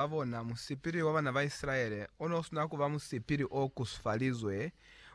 ba bona, musipili wa bana ba Isilaele o ne u sina ku ba musipili o kusufalizwe.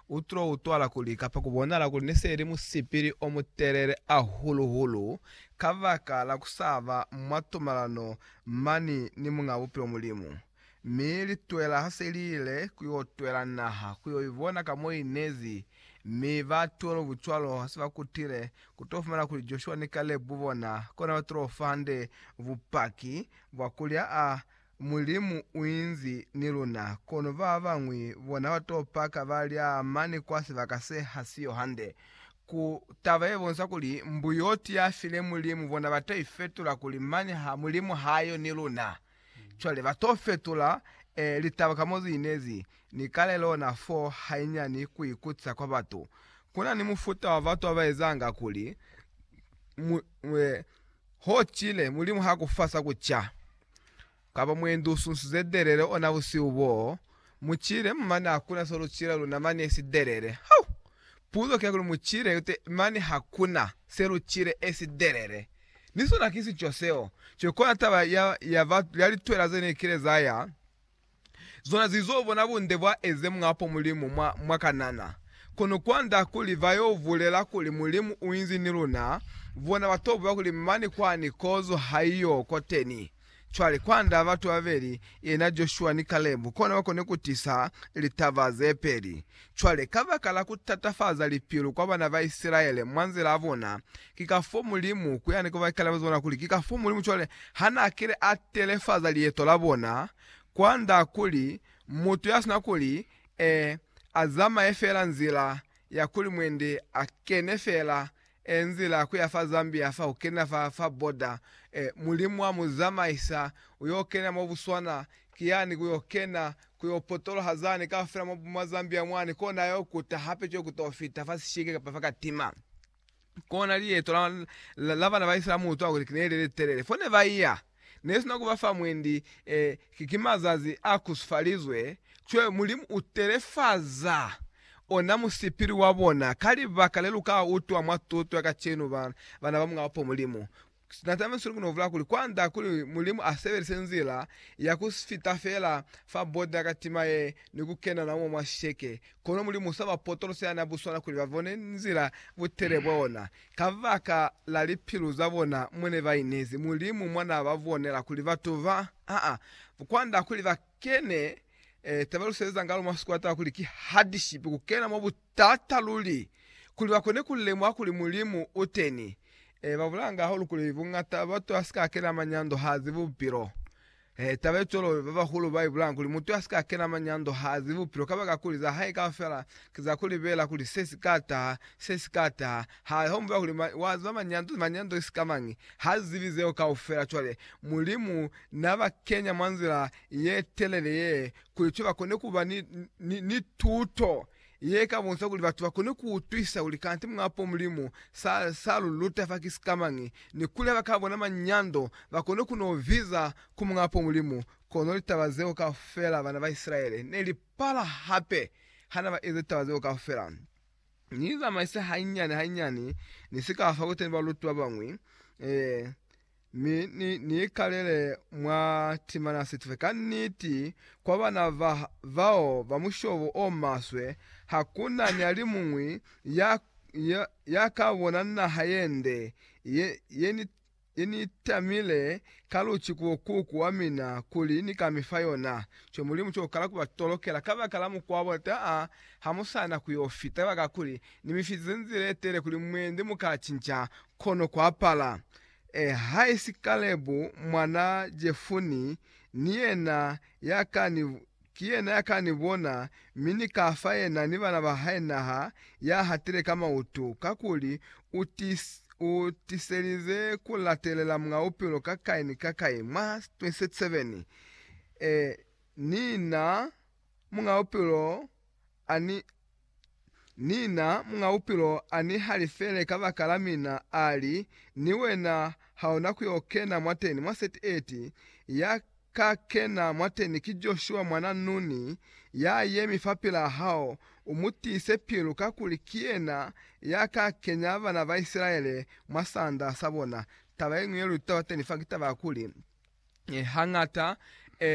U tilo utwala kuli, kapa ku bonahala kuli ne se li musipili o mutelele hahulu-hulu kabaka la ku sa ba mwa tumalano mani ni Muñ'a Bupilo Mulimu. Mi litwela ha se li ile ku yo twela naha ku yo i bona ka mo i nezi, mi ba twelo bucwalo ha se ba kutile, ku to fumana kuli Joshua ni Kalebu bona kona ba tilo fa hande bupaki Bwa kulya a, Mulimu uinzi ni luna, kono babañwi bona bato paka balya mane kwa sibaka se hasiyo hande. Ku taba yebonisa kuli mbuyoti yafile Mulimu bona bato ifetula kuli mane ha Mulimu hayo ni luna. Cwale bato fetula e, litaba ka mozi inezi ni kalelo na fo hainyani ku ikutisa kwa bato. Kuna ni mufuta wa bato abaezanga kuli mu, e, Ho cile, Mulimu ha ku fa sa ku ca. Kaba mwendi u sunsize delele ona busihu boo, mu cile, mane hakuna so lu cila luna mane esi delele. Hau! Puzo ki ya kuli, mu cile, mane hakuna se lu cile esi delele. Ni sona ki sico seo. Cwale kona taba ya, ya, ba, ya litwela ze ne kile za ya. Zona zi zo bona bunde bwa eze mwapo Mulimu mwa, mwa Kanana. Kono kwanda kuli ba yo bulela kuli Mulimu u inzi ni luna, bona ba to buya kuli mane kwani kozo ha i yo koteni. Cwale, kwanda batu babeli, yena Joshua ni Kalebu, kono ba koni ku tisa litaba ze peli. Cwale, kabakala kutatafaza lipilu kwa bana ba Isilaele mwa nzila ya bona, ki ka fo Mulimu, ku yani kubakalabezi bona kuli ki ka fo Mulimu cwale ha na kile a telefaza lieto la bona, kwa nda kuli mutu ya sina kuli e, a zamaye fela nzila ya kuli mwendi a kene fela E nzila kuya fa Zambia fa kukena fa fa border e Mulimu wa mu zamaisa uyo kena mo buswana ki yani kuyo kena kuyo potoloha zani kaufela mo mwa Zambia mwani kona ayo kuta hape co kuto fita fa sishike kapa fa katima kona liyeto la la bana ba Israel mu utwa kuli kine lile litelele fo ne ba iya nesina kuba fa mwendi, e, ki, ki mazazi a kusifalizwe, cwale Mulimu u telefaza ona musipili wa bona, ka libaka le lu ka utwa mwa tuto ya kacenu, ba, bana ba Mulaho po Mulimu. Na tamiswile ku novula kuli, kwand'a kuli Mulimu a sebelise nzila ya ku si fita fela fa bota ya katima ye ni ku kena na umo mwa sheke, kono Mulimu u sa ba potolosa ya n'a buswana kuli ba bone nzila butele bwa ona, Kabaka la lipilu za bona mo ne ba inezi, Mulimu mwa na ba bonela kuli batu ba ha kwanda kuli ba kene, ta ba luseleza ngalo mwa sikwata kuli ki hardship, ku kena mwa butata luli, kuli ba kone ku lemuha kuli Mulimu u teni. Ba bulanga hahulu kuli bungata bwa batu ha si ka kena manyando, ha zi bupilo. He, taba ye cwalo ba bahulu ba i bulanga kuli mutu a si ka kena manyando ha zibi bupilo kabaka kuli za hae kaufela ki za ku libela kuli se si ka taha, se si ka taha. Ha ho mu ba kuli, Ma, wa ziba manyando, manyando ki sika mañi? Ha zibi zeo kaufela. Cwale, Mulimu na ba kenya mwa nzila ye telele ye, kuli cwale ba kone ku ba ni, ni, ni tuto Ye ka bonsa kuli batu ba kone ku utwisa kuli kanti mwa po Mulimu sa, sa lu luta fa ki sikamañi, ni kuli ha ba ka bona manyando ba kone ku no biza ku mwa po Mulimu. Kono litaba zeo kaufela bana ba Isilaele ne li pala hape ha na ba ezi litaba zeo kaufela. Ni zamaise hanyinyani hanyinyani, ni si ka fa kuteni baluti ba bañwi, ee, Mi ni, ni ikalele mwa timana situfe. Kanniti, kwa bana ba, bao ba mushobo o maswe, hakuna ni alimuñwi ya, ya, ya ka bona naha yende ye, ye ni, ye ni tamile ka luci ku bokuku wa mina kuli ni ka mi fa yona. Cwale Mulimu cwalo kala ku ba tolokela kabaka la mukwa wa bona, taa, ha mu sa na ku yo fita, kabakakuli Ni mi fitize nzila ye telele kuli mwende mu ka cinca, kono ku apala. E, haisi Kalebu mwana Jefuni, ni yena ya ka ni, ki yena ya ka ni bona, mi ni ka fa yena ni bana ba hae naha ya hatile ka mautu, kakuli u ti, u tiselize ku latelela Muñ'a Bupilo ka kai ni ka kai. Mwa 27, e, ni na Muñ'a Bupilo a ni, ni na, Muñ'a Bupilo a ni halifele kabakala mina, a li, Ni wena ha u na ku yo kena mwateni, mwa 38, ya ka kena mwateni ki Joshua mwan'a Nuni, ya yemi fapil'a hao, u mu tiise pilu, kakuli ki yena ya ka kenya bana ba Isilaele mwa sanda sa bona. Taba ye ñwi ye lu itutabateni fa ki taba ya kuli, hañata,